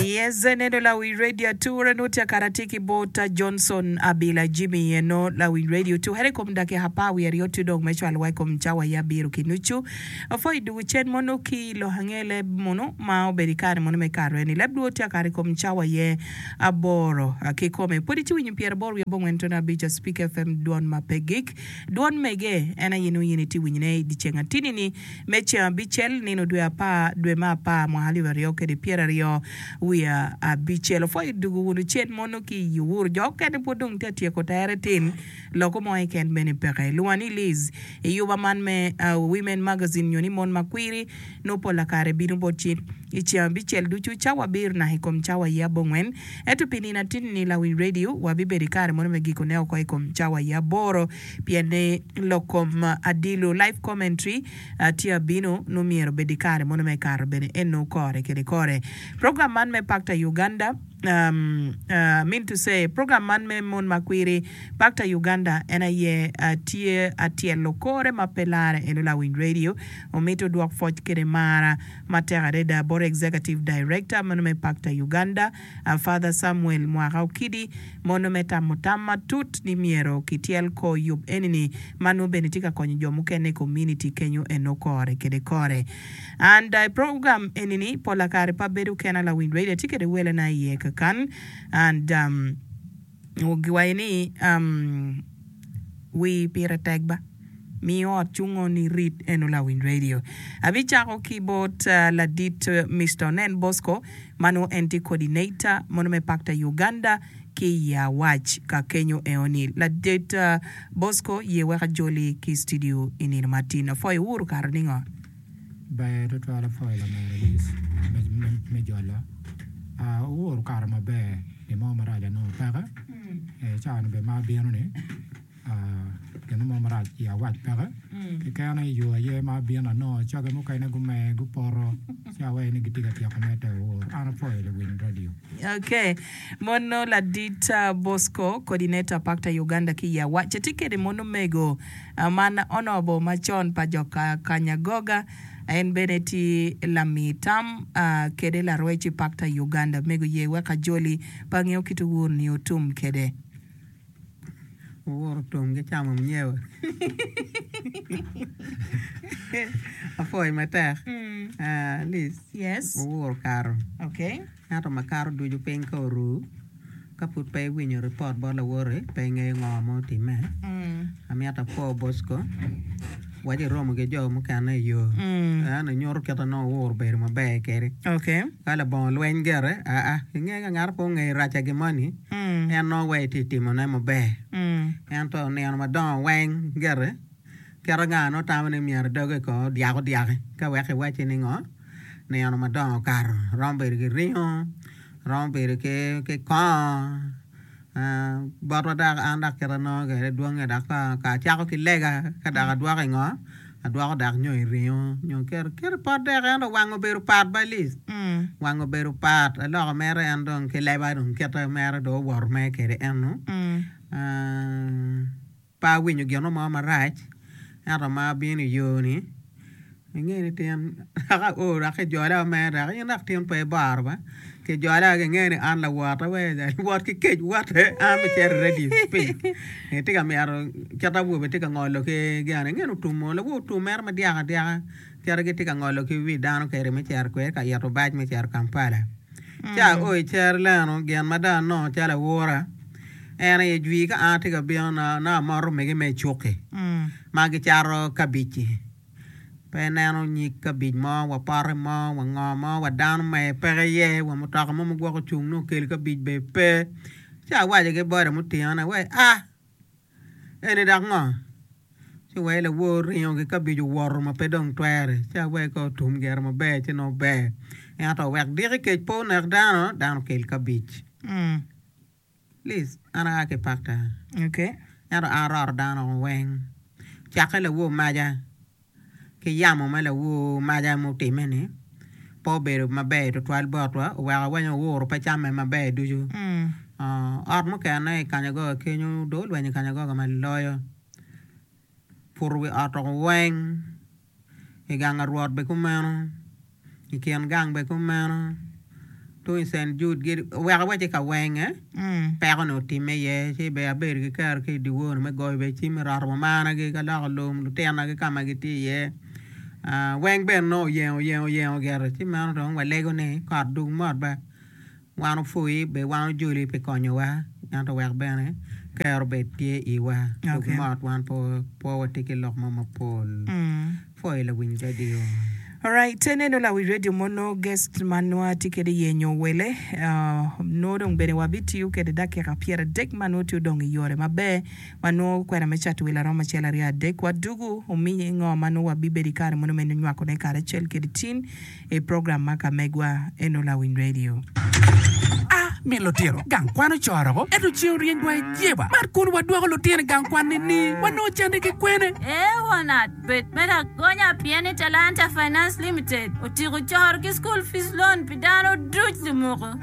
Yes, eneno lawiny radio ature nongo tye kare atye ki bota Johnson Abila Jimmy eno lawiny radio oture i kom dakika apar wiye aryo tye dong me cwalowa i kom cawa aye abiro ki nucu apwa i dwogo cen mono ki i lok ange leb mono ma obedo i kare mono me kare eni leb lwod tye kare i kom cawa aye aboro kikome pwod itye winyo pyeraboro wiye abongwen tono abic a Speak FM dwon ma pe gik dwon mege en aye nongo in itye winyone i dye ceng atini ni me ceng abicel, nino dwe apar, dwe me apar, mwaka alip aryo kede pyeraryo wiye abicel. Wupwoyo i dugu wunu cen mono ki i iwuru. Jo okene pwod dong tye ka tyeko tere tin, loko mo keken bene peke. Lwa ni Liz, i yuba man me Women Magazine nyo ni Mon Makwiri, nwo pol akare bino bot ci i ceng abicel ducu, cawa abiro naka i kom cawa aye abongwen. Ento pi nino atinni lawi radio, wabibedo i kare mono me gikone oko i kom cawa aye aboro. Pien ni lok kom adilo, life commentary, tye abino, nongo myero obed i kare mono me kato bene eno kore kede kore. Program man me Pakta Uganda, I mean to say, program man me Mon ma Kwiri, Pakta Uganda en aye tye atyelo kore ma pe lare eno Lawiny Radio omito dwok pwoc kede mara matek adada bot Executive Director meno me Pakta Uganda, A Father Samuel Mwaka Okidi, Mono me tamo tam matut ni myero kityel kor yub eni-ni ma nongo bene tye ka konyo jo mukene i komuniti kenyo eno kore kede kore. And I program eni-ni pola kare pe abedo kena lawiny radio tye kede welana iye kakan and um, Nyo giwaco ni, Wi pire tek ba. Mi ot cungo ni rit eno lawiny radio. Abicako ki bot ladit Mister Onen Bosco ma nongo en tye coordinator mono me pakta Uganda ki i Awac ka kenyo eo ni. Ladit Bosco ye wek ajoli ki studio i nino ma tin. Apwoyo wu, okato ningo? Ber tutwal apwoyo lamego Lis me jolo. Owor okato maber gin mo marac anongo peke ee cawani bene ma abino ni gin mo marac i awac peke keken aye yo aye ma abino anongo coge mukene gumer gupoto ci awaco ni gitye ka tyeko mete owor an apwoyo luwiny radio. Ok. Mono ladit Bosco, Coordinator Pakta Uganda ki i Awac, atye kede mono omego. Man onobo macon pa jo kanya goga, en bene tye lami tam kede larwec i pakta i Uganda me guye wek ajoli pa nge okit owur ni otum kede. Owur otum ki camo mnyewa. Apwoyo matek. Liz. Yes. Owur okato. Okay. Ento makato ducu piny ka oru, ka pud pe iwinyo ripot bot lawoti, pe ingeyo ngo ma otimme. Amyero apor Bosco, waci iromo ki jo mukene i yo, en inyuto kit ma nongo wuuru bedo maber kede. Ka labongo lweny gire, aa, ingeyo ka ngat pe ongeyo racca gin moni, en nongo wai itye timone maber. Ento nino madongo weng gire. Kit anga nongo tamo ni myero dogi ko dyako dyaki ka weko iwacci ni ngo nino madongo okato romo bedo ki ringo romo bedo ki kongo botwa dok an dok kit anongo kwede dwong nya dok ka acako ki lega ka dok adwoko ingo adwoko dok nyo iringo nyo kit ipot dek ento wanga obedo pat balic wanga obedo pat aloko mere en dong ki leba dong kite mere dong owoto mere kwede eno. Pe awinyo gino mo marac, ento ma abino i yoni, inge ni tin dok ao dok kijola me dok in dok tin pe ibaro ba, kijola kinge ni an lawot awee wot ki kec wote an bicito i radio speak itye ka mito kit awobe tye ka ngolo ki gin inge ni otum oo lawobe otum mere madyaka dyaka. Cito gitye ka ngolo ki wi dano keri me cito kwede ka ito bac me cito Kampala. Ca o i cer leno, gin ma dong anongo calo awora en aye jwi ka an atye ka bino nongo amoto omege me icuki ma gicato kabic-ci. Pe ineno nyig kabic mo wa pote mo wa ngo mo wa dano ma aye peke iye wa mutoka mo ma gwok ocung nongo okel kabic bene pe. Ci awaco ki boda mutinga-ni ni, Wee a! Eni dok ngo? Ci wee lawor ringo ki kabic owoto ma pe dong twere, ci awee ka otum gire maber ci nongo ber. Ento wek diki kec pe onek dano, dano okel kabic. Liz, An aa ki Pakta, ento an aroto dano weng, cakke lawor maja. ki yamo ma lawor maca mutimme-ni pe obedo maber tutwal botwa, oweko weny owuro pe camme maber ducu. Ot mukene i kanyagoga kenyu, dong olwenyo i kanyagoga ma loyo. Puto wi ot oko weng, i gang Rwot bene kumeno. I kin gang bene kumeno. Tung i Cent Jud oweko aweca i kawenge, peko ni otimme iye ci bene abedo ki kero ki i dyewor me goyo bene cim me roto mumanagi ka loko lum, lutinagi ka ma gitye iye. Weng bene nongo oyengo oyengo oyengo gire ci meno dong walego ni kot dug mot ba. Wan opwoi be wan ojoli pi konyowa, ento wek bene ker obed tye iwa. Dog mot wan pe pwo watye ki lok mo mapol. Pwoyo lawiny radio. Alright te neno lawic radio mo no guest ma nongo atye kede iye nyo wele nongo dong bene wa bitiyo kede dakika pyer adek ma nongo tye odong iyore maber ma nongo kwena me cato wele aromo acel aryo adek wa dugu omiye ingo ma nongo wa bibedo ikare mono me nywakone karacel kede tin I program ma ka megwa eno lawiny radio. A mi lutino gang kwan ocoroko, ento ce oryeny wa i jeba. Mar kun wa dwoko lutino i gang kwan ni ni wa nongo cande ki kwene. Eonard bet me lagonya pien ni Talanta Finance Limited otiko coro ki school fees loan pi dano duc lumoko.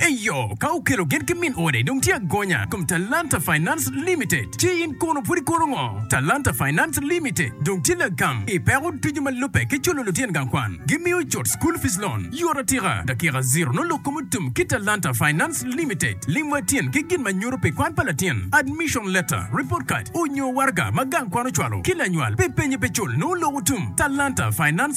Eyo, ka okelo gin ki min ode dong tye agonya kom Talanta Finance Limited. Ci in kono pud ikono ngo? Talanta Finance Limited dong tye lagam i peko ducu ma lubbe ki culo lutyen gang kwan. Gi miyo cut school fees loan yot atika. Dakika ziro nongo lok kom otum ki Talanta Finance Limited. Lim wa tyen ki gin ma nyuto pi kwan pa latin, admission letter, report card, onyo waraga ma gang kwan ocwalo ki lanywal pi penye pe cul nongo lok otum. Talanta Finance.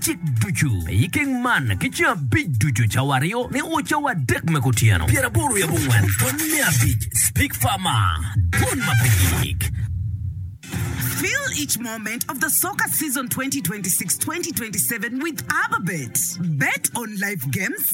cik ducu i keng man ki ceng abic ducu, cawa aryo ni o cawa adek me kutyeno. Pyeraboro wiye abongwen pwony me abic Speak Farmer Dwon ma pe yik. Fill each moment of the soccer season 2026-2027 with AbaBet. Bet on live games,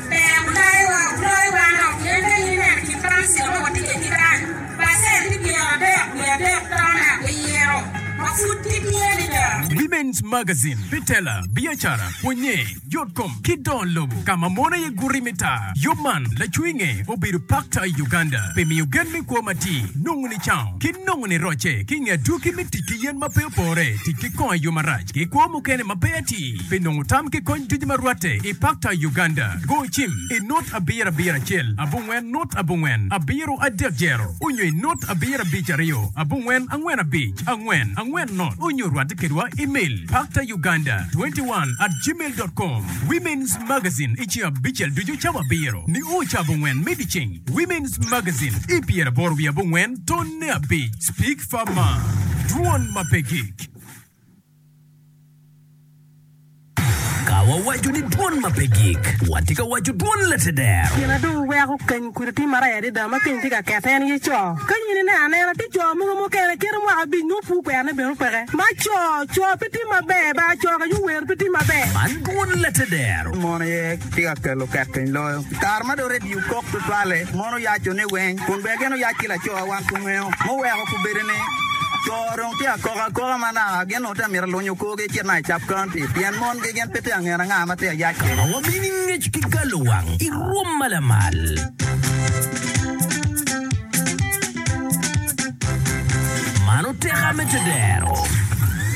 Women's Magazine, pi tela, biacara, pwonye, yot kom, ki dongo lobo ka ma mon aye guti me taa. Yub man lacwinge obedo pakta i Uganda pi miyo gen me kwo matir, nongo nicango, ki nongo nirocce ki nge adwogi me tic ki yen ma pe opore, tic ki kongo i yo marac, ki kwo mukene ma pe atir. Pi nongo tam ki kony ducu ma rwatte i Pakta, Uganda, go cim i nut abiro abiro acel abongwen nut abongwen abiro adek jero onyo i nut abiro abic aryo abongwen angwen abic angwen angwen nut onyo rwatte kedwa imel pakta uganda 21 at gmail dot com Women's Magazine i ceng abicel ducu cawa abiro nio ca abongwen me dyeceng Women's Magazine i pyeraboro wiye abongwen tonne abic Speak Far Mar Dwon ma pe gik. Ka wawaco ni dwon ma pe gik, watye ka waco dwon latedero. Gin adungo weko keny kudi tye maraya adada ma keny tye ka kete en aye co. Ka in ineno anena tye co mogo mukene kite mwaka abic nongo pur kwerne bene opeke. Ma co, co pe tye maber ba co ka yo wer pe tye maber. Man dwon latedero. Mon aye tye ka kelo ket keny loyo. I kare ma dong redio kok tutwalle, mon oyaco ne weng kun bene gin oyac ki laco a wan pu ngeo, muweko pu bedo ni. Oo dong tye akok akoka ma naa gin onongo tye mito lunyo kor gi kit ma icap county pien mon gi gin pe tye angene anga ma tye ayac kino. Wabino i ngec ki galo wang i rwom ma lamal. Mano teka me tedero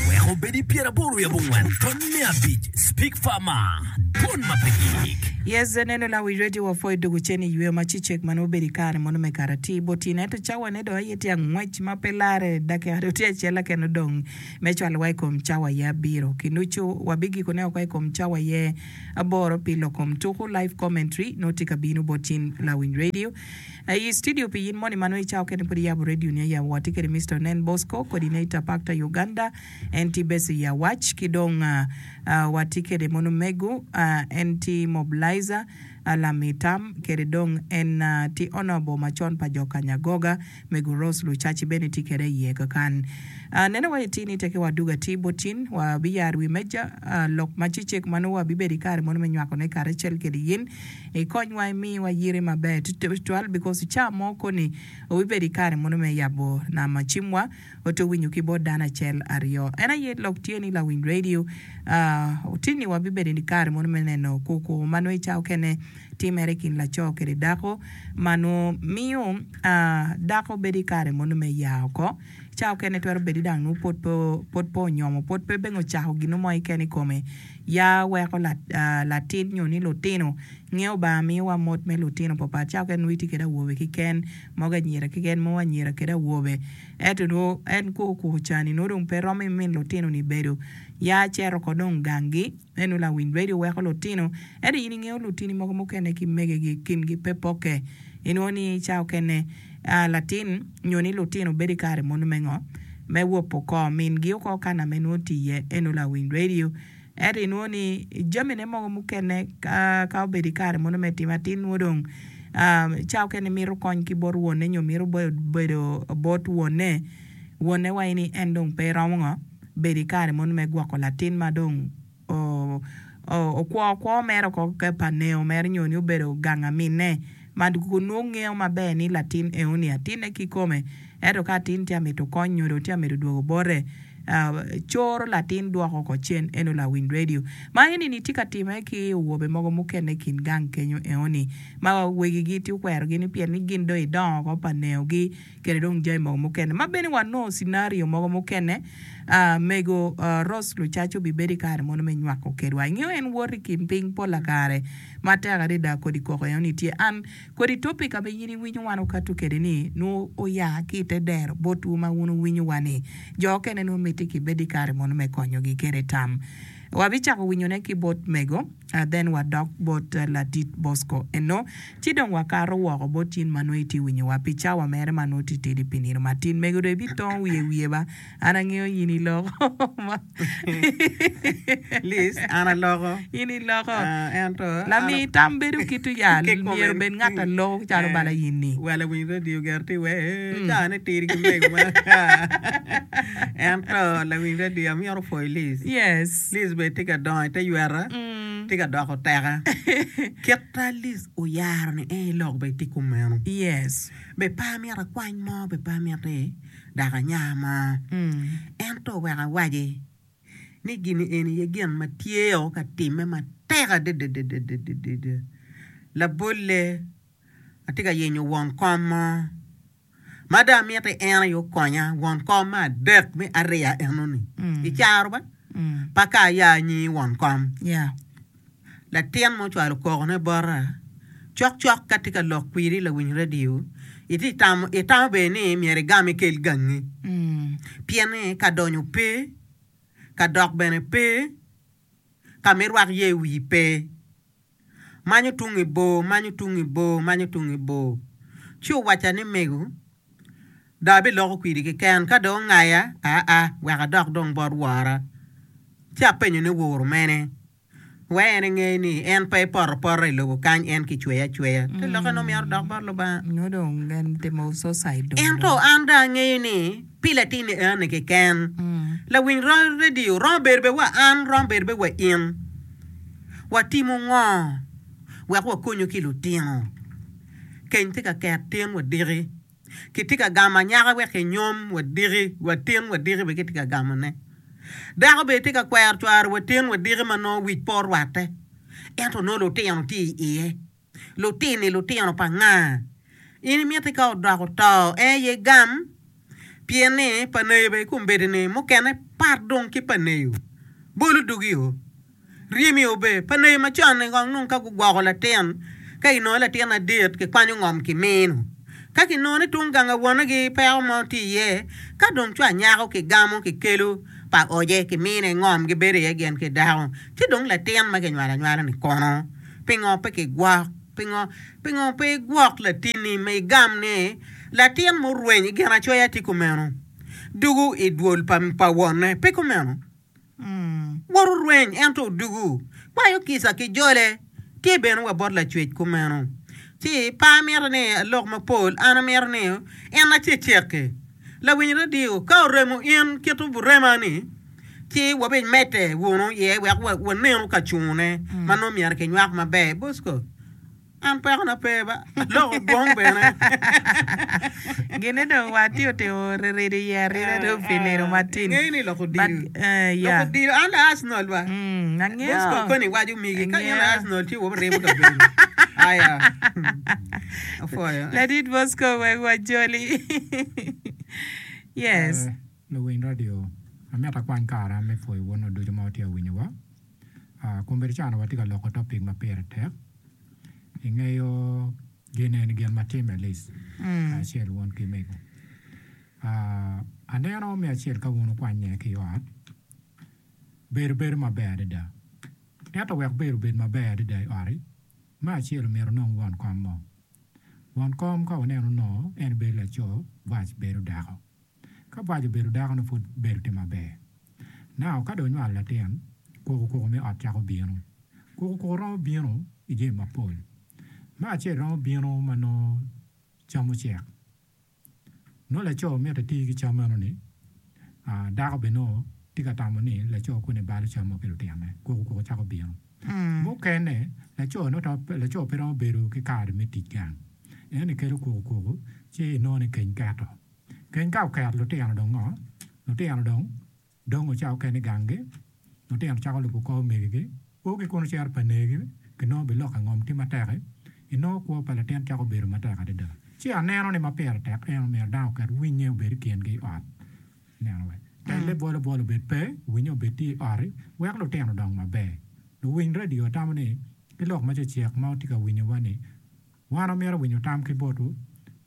weko obed i pyer aboro wi abongwen tony me abic speak far ma Don ma pe gik. Yes I neno lawic radio wa pwo I dog ocen I yweyo ma ci cek ma nongo bedo I kare mono me karati botino ento cawa ne dong aye Tye angwec ma pe larre dakika dong tye acel keken odong me cwalowa i kom cawa aye abiro. Kinucu wabigikone woko i kom cawa aye aboro pi lok kom tuku, Live Commentary, nongo tye ka bino bot cing lawiny radio. I studio pi in moni ma nongo i cawa keken-ni pud iyabo radio-ni aye, watye kede Mister Onen Bosco kodi ne i Tapakta, Uganda, en tye beco i awac, ki dong watye kede mon omego, en tye mobilizer. Alam i tam, kede dong en tye ono bor macon pa jo kanya goga me guros lucaci bene tye kede iye kakan. Nene wa iti ni tekewa dug atir bot tin, wa bi yaro wi meja lok ma cecek ma nongo wa bi bedo i kare mono me nywako ne kare acel kede yin i kony wa i miyo wa yiri maber tutwal because i caa mo koni wa bi bedo i kare mono me yabo nama cim wa Watwero winyo ki bot dano acel, aryo. En aye lok tye ni lawiny radio. Tinni wabibedo i kare mono me neno koko ma nongo i cawa okene timere i kin laco kede dako ma nongo miyo dako bedo i kare mono me ya oko. Cawa okene twero bedo ni dang nongo pud pe pud pe onyomo pud pe bene ocako gin mo keken i kome. Ya weko latin nyo ni lutino nge Lubanga miyowa mot me lutino papat. Cawa okene nongo itye kwede awobe keken. mogo anyira keken mo anyira kede awobe. Ento nwo en kwo okuko cani nwo dong pe romo imin lutino ni bedo. Ya ceto ko dong gang gi. Eno lawiny radio weko lutino. Ento in ingeyo lutini mogo mukene ki mege gi kin gi pe poke. Inwo ni ca okene ah latin nyo ni lutino bedo ikare mono me ngo? Me wopo ko min gi oko kana me nwo tiye. Eno lawiny radio. Ento inwongo ni jamine mogo mukene ka obedo i kare mono me tim atin nwo dong ca okene mito kony ki bot wonne nyo mito bedo bot wonne, wonne waco ni en dong pe romo ngo bedo i kare mono me gwoko latin ma dong okwo kwo mere oko keken pa neo mere nyo ni obedo gang aminne. ma gunongo ngeyo maber ni latin eoni atine kikome, ento ka atin tye ka mito kony nyo dong tye ka mito dwogo bote, coro latin dwoko oko cen eno lawiny redio. Ma enini tye ka timme ki owobe mogo mukene i kin gang kenyo eoni ma wegigi tye okwerogi ni pien ni gin dong idongo oko pa neogi, kede dong jami mogo mukene ma bene wanongo cinario mogo mukene a mego Rose Lucaco bibedo i kare mono me nywako kedwa. Ingeyo en woto i kin piny pol lakare matek adada kodi koko eno ni tye an kodi topic ama in iwinyo wan okato kede ni nwo oya ki i te dero bot wu ma wun wuwinyo wa ni jo okene nwo miti ki bed i kare mono me konyogi kede tam. Wabicako winyone ki bot mego. A Then wadok bot Ladit Bosco eno, ci dong wakato woko bot cin ma nongo itye winyowa pi cawa mere ma nongo titidi pi nino matin. Mego dong ibitongo wiye i wiye ba? An angeyo in iloko. Liz, An aloko. In iloko. Ah, ento an. Lamii tam bedo kit oyal, Kikomen. myero obed ngat a loko calo bala in ni. Wel awiny radio ger ti we caa ne tidi ki mego ma. Ento lawiny radio amyero opwoy Liz. Yes. Liz bene tye ka dongo i te yweta, tye ka doko teka. Kit ma Liz oyaro ni en ilok bene tye kumeno. Yes, bed pe amito akwany mo, bed pe amito ni dako anya mo, ento wek awaci ni gini eni aye gin ma tye o ka timme matek adadadada. Labolle, atye ka yenyo won kom mo ma dong amiti en aye okonya won kom me adek me ariya enoni i caro ba pa ka aya anyingi won kom latin ma ocwalo koko ne bota cok cok ka tye ka lok kwidi lawiny radio iti tamo itamo bene ni myero igam ikel gangi pien ni ka donyo pe ka dok bene pe ka me rwak ye wii pe. Manyo tung i bor, manyo tung i bor, manyo tung i bor. Ci owacca ni, Mego, dong abiloko kwidi keken, ka dong ongaya, aa, wek adok dong bot wora. Ci apenyo ni, Woro mene? Wek en enge ni en pe epoto apota i lobo kany, en kicweye acweya. Te lokke nongo myero odok bot Lubanga. Ento an dong angeyo ni pi latin enoni keken, lawiny redio romo bedo bene wa an, romo bedo bene wa in. Watimo ngo wek wakonyo ki lutino? Keny tye ka ket tin wadiki. Kitye ka gamo anyaka wek enyom wadiki, wa tin wadiki bene kitye ka gamone. Dako bene tye ka kwero cware wa tin wadiki ma nongo wic pe orwatte, ento nongo lutino tye i iye. Lutini lutino pa nga? In imiti ka odok oto en aye gam? Pien ni pa neyo bene kombeddi ni mukene pat dong ki pa neyo. Bolu dugi o. Ryemi o be. Pa neyo macon ni kong nung ka gugwoko latin ka ginongo latin adit kikwanyo ngom ki mino. Ka kinongo ni tung ganga wone gi peko mo tye iye ka dong co anyako ki gamo ki kelo pa oje ki mine ngom gibedo iye gin ki dako ci dong latin ma kinywalo anywala ni kono? Pingo pe kigwok? Pingo, pingo pe igwok latinni ma igam ni, Latin ma orweny i Ginacoya tye kumeno, dugo i dwol pa, pa wonne? Pe kumeno. Woro orweny, ento odugo, kwayo kica ki jole, tye bene wa bot Lacwec kumeno. Ci, pe amito ni alok mapol, an amito ni en acecekki. Lawiny radio, ka oremo in kito burema ni, ci wabimedde wunu iye wek wanenu ka cungune ma nongo myero kinywak maber. Bosco, An pekona pe, aloko gwong bene. Gine dong watye otimo rirido iye arida dong pi nino matin. Ingeyo ni loko odilo, loko odilo an la Arsenal ba. Bosco koni iwaco migi ka in la Arsenal ci wabiremo kabedo. Aya. Ladit Bosco wek wajoli. Yes. Luwiny radio, amito akwany kara me pwoyo wunu ducu ma wutye ka winyowa. Kombeddi ca onongo watye ka loko topic ma pire tek. Ingeyo gin eni gin ma timme Liz kacel wun ki mego. Aneno me acel ka wun wukwanye ki i ot, bedo bedo maber adada. Ento wek bedo obed maber adada i ot-ti, Me acel omyero onong won kom mo. Won kom ka wuneno onongo en bedo laco, bwac bedo dako. Ka bwac obedo dakono pud bedo tye maber. Nao ka dong onywalo latin, kukukuku me ot cako bino. Kukukuku romo bino i jami mapol. Me acel romo bino ma nongo cam ocek. Nongo laco mito eti ki cam meno ni, dako bene nongo tye ka tamo ni laco koni balo cam mo ki lutinone, kwogo kwogo cako bino. Mukene, laco nongo pe, laco pe romo bedo ki kare me tic gang, en ni kelo kwogo kwogo ci inongo ni keny keto. Keny ka oket lutino dong ngo? Lutino dong. Dong ocako kene i ganggi, lutino cako lubo kor omegigi, O ki kunu cero pa negi, kinongo bilok ka ngom tye matek-ki, inongo kwo pa latin cako bedo matek adada. Ci aneno ni ma pire tek en omyero dano oket winnye obed i kingi i ot, neno wek telle bolo bolo obed pe, winnye obed tye i ot-ti, wek lutino odong maber. Luwiny radio otamo ni, Ki lok ma cecek ma wutye ka winyowa-ni, wan wamito winyo tam ki botwu,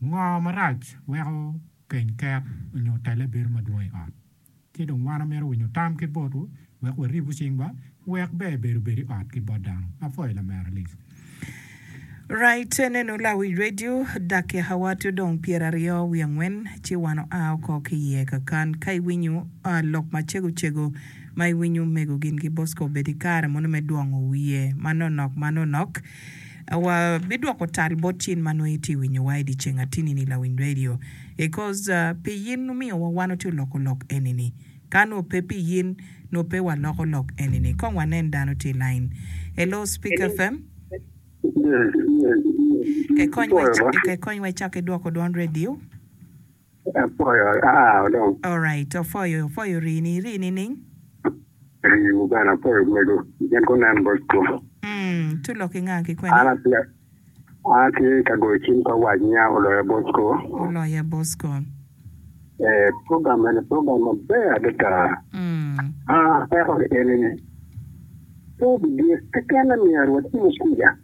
Ngo marac weko keny ket onyo telle bedo madwong i ot? Ki dong wan amito winyo tam ki botwu wek waribu cingwa wek ber bedo bed i ot ki bot dano. Apwoyo lamera Liz. Right enenu lawic radio dakika wa tye dong pyera aryo wiye angwen ci wan oa oko ki iye kakan ka iwinyo lok macego cego ma iwinyo omego gin ki Bosco obed ikare mono me dwongo wiye manonok manonok Wa bi dwoko tal bot cin ma nongo itye winyo wa idi ceng atini ni lawiny radio e coz pi yin omiyo wa wan watye loko lok eni ni ka nongo pe pi yin nongo pe wa loko lok eni ni kong wa nen dano tye lain Hello speaker fm ke kony wa icake dwoko dwon radio. Apwoyo aao dong. Alright opwoyo opwoyo rii ni rii nining? Rii wu bene apwoyo mego gin gunen bot kom. Umm to lok inga ki kwene? An atye an atye ka goyo cim ka wac niya oloya Bosco. Oloya Bosco. Ee program mene program maber adada. Aa peko enini. Pe bidyek kekene myero watimo kuca.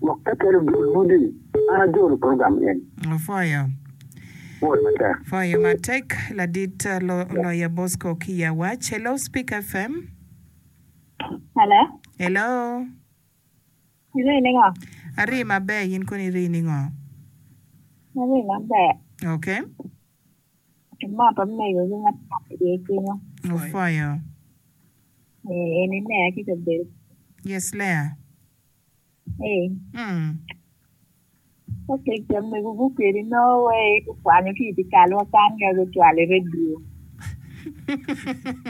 Gwok kakelo dul mudi. An ajolo program eni. Opwoyo. Pwoyo matek. Pwoyo matek ladit Loya Bosco ki i Awac. Hello Speak FM. Hello. Hello. Iri ningo? Ari maber in kono iri ningo? Ari maber. Okay. Imoto meyo gi ngat mo iye kenyo. Opwoyo. Ee, en e Lea ki Cabel. Yes, Lea. Ee. Mm. Ka kec jam mego gukeli no we kwanyo ki iti kalwa kan ka gucwalo i radio.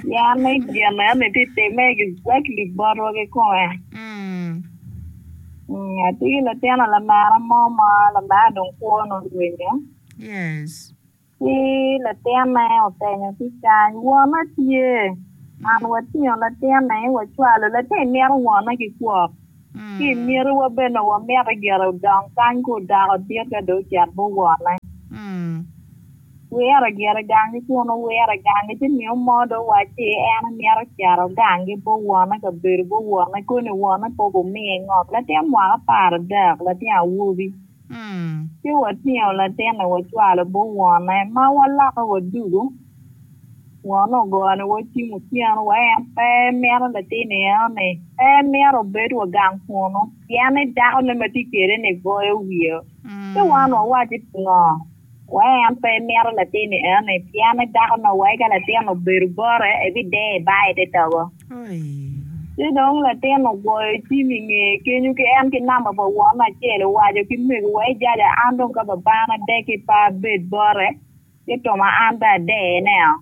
Ya me jam me ame ti time exactly botwa ki konga. Mm. Mm, ati ki latin lamara mo ma lamara dong kwo nongo rwenyo. Yes. Ci latinne openyo ki cany, Wona tye? An watingo latinni, wacwalo. Latinni mito wone ki kwok, ci i myeriwa bene wamite gire odong kany ka odako dit ka dong ocit bot wone. Wire gire gangi kun owire gangi, ci miyo mo dong wacci en emito cito gangi bot wone ka bedo bot wone koni wone pe gumiye ngom. Latin mwaka apar adek, latin awobi. Ci watingo latinni wacwalo but wonne, ma waloko wadugo. Wonne ogoyo ni wacim otyeno wa en pe mito latinni eno-ni, pe mito obed wa gang kunnu, pien ni dakone ma tye kwede-ni goyo wiye. Ci wan wawaci pingo? Wai en pe imito latinni enoni pien ni dako nongo wai ka latin obedo bote ebideyo i bar ite togo. Ci dong latin ogoyo cim i ngeye kenyo ki en ki namba pa won acel owaco ki mego wai jaja an dong ka babana adek ki pe abed bote ci tuma an be adeyoneo.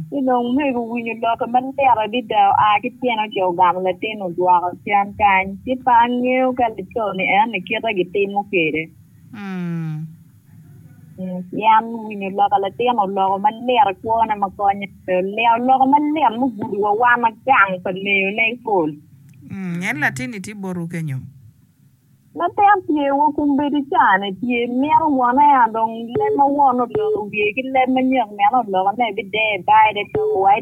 Ci dong mego owinyo lokke malit adida oa ki tyene ocito ogamo latin odwoko cen kany ci pe angeyo ka laconi enoni kite gitimo kwede. Yan winyo loka latin oloko malit i kwone ma konye pe olyeo oloko malit mugudo wa wan gang pa leyo ne ipol. En latinni tye botu kenyo. Latin tye wa kombeddi cane tye mito wone ya dong leb ma wone oloko wiye ki leb manyak meno oloko ne bideyo bide doko wa.